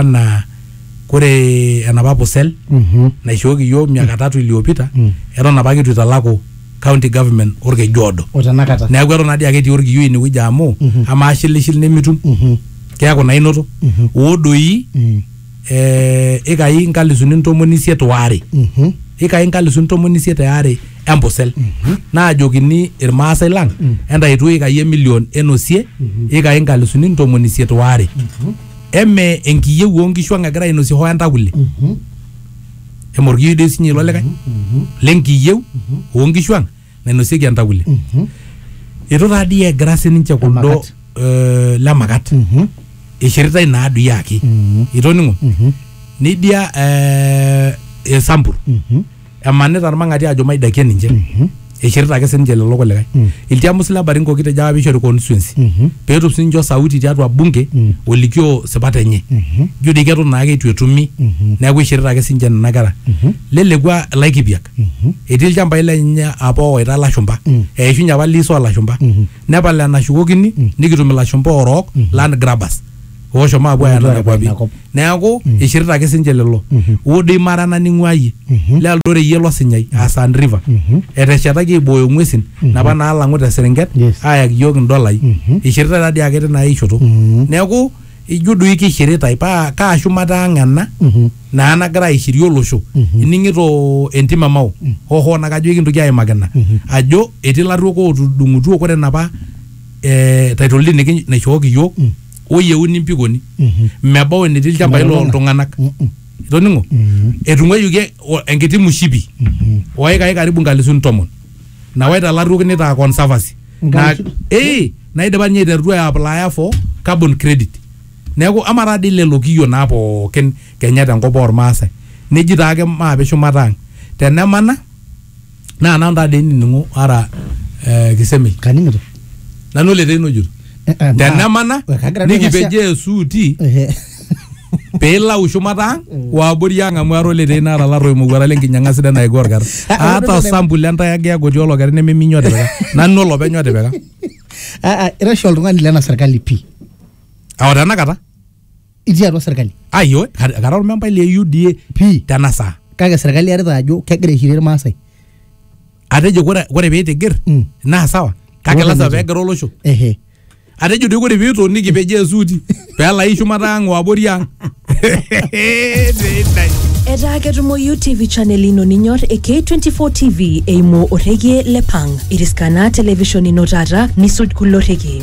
anaa kore enapa pusel Mhm. naishooki iyiook miaka tatu iliyopita Mm. eton apake eitu italaku county government orkeju oodo o tenakata neeku eton nadii ake etii orkiyo inewueji amu Mhm. amaa shilishil nimitum Mhm. keeku naa inoto Mhm. oo doi Mm. eh, ikai nkalisuni ntomoni isiet waare Mhm. ikai nkalisuni ntomoni isiet eare empusel naajokini irmaasai lang entaitu ikai emilion enosie ikai nkalisuni ntomoni isiet waare eme enkiyieu oonkishu ang egira ainosie hoo entakule eme orkiyioi doi sinye ilo likae lenkiyieu oonkishu ang nainosieki entakule itu taa dii egira sininche kuldo Lemakat. eh, lemakat ishiritae naa doi ake itoning'o nidia eh, esambur emanita irmang'ati ajo maidakie ninche eishirita ake sininche lelo kulikae ilchamus le baringo kitejo apa peishori constituency peetum sininche osauti tiatua bunge olikioo sipat enye ijo dii keton naake eitu etumi neeku eishirita ake sininche nena kera lelekua ilaikipiak etii ilchambai lenye apa oowaita ilashumba eishunye apa lease oolashumba nepal enashukokini nikitum ilashumba oorook land grabbers ooshomo apuo aaya Ootu nena aaya kwapi ina kop. neeku eishirita ake sinche lelo odo imara naning'ua iyie le Eldoret iyie losinyai aa Sand River eteshetaki aibooyo ng'uesin napa naalang'u te Serenket Yes. aayaki iyiook indolai eishiritae taa dii ake tina ae shoto neeku ijo doi keishiritae paa kaa shumata ang ena naa nagira aishirie olosho ining'ito entim e Mao hoo hoo naa kajo ekintoki aimaki ina ajo etii ilarruok ootudung'utuo kore inapa eh, title deed niki- naishooki iyiook oyieuni mpikoni Mhm. mebau enetii ilchambai Mebau ena. looltung'anak Mhm. itoning'o Mhm. etung'uayioki e- o- enkiti mushipi Mhm. oikai karibu nkalisuni tomon nawaita ilarruok nitaa conservancy na, Nkalisu- eh, naidipa ninye aiterutua aiaplaya for carbon credit neeku ama taa dii lelo kiyio naa pookin kenya tenkop ormaasai neji taake maape shumata ang tenemana naa nanu taa dei nining'o ara eh, kisemei kaning'ito nanu ele teino jur Eh, eh, ma- tenemana we, kagira duo ng'asia- nikipejoo esuuti Ehe. piilau shumata ang waabori ang amu ara oletei naata laro imowuara lenkinyang'a sidai naiko orkar Ah, ata ore- osambuli entai ake agoti olokeri nememinyi otipika nanu olopeny otipika Ah, ah, ira oshi oltung'ani lena serkali pii ao tenakata itii atua serkali ayo kara ormembai le UDA pii tena saa kake serkali earita ajo kegira aishirie irmaasai atejo kore kore piitigir Mm. naa sawa kake Ore lasima mejo. pegira olosho ehe atejo doi kore piitoniki pejoo esuuti peelai shumata ang o abori ang Sidai. etaa ketumoyu tv channel ino ninyor e k24 tv eimu orregie le pang iriskana television ino taata nisuj kulo rrekie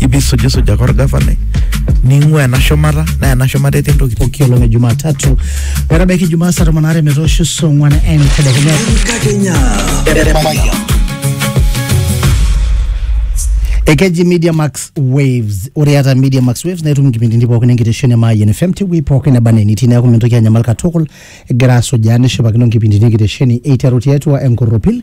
ibisujisujaka orgavanai ning'ua ena shumata naa ena shumata etii ntokitin pooki olong e Jumatatu metabaiki Jumaa saa tomon aare metoosho saa ong'wan entedekenya. Enkakenya. Ekeji Media Max Waves. Ore iata Media Max Waves naa itum inkipindini pookin enkitesheni e Mayian FM tewuei pookin neba enaa enitii neeku mintoki anyamal katukul egira asujaa nishipakino inkipindini enkitesheni eiteru tiatua enkorropil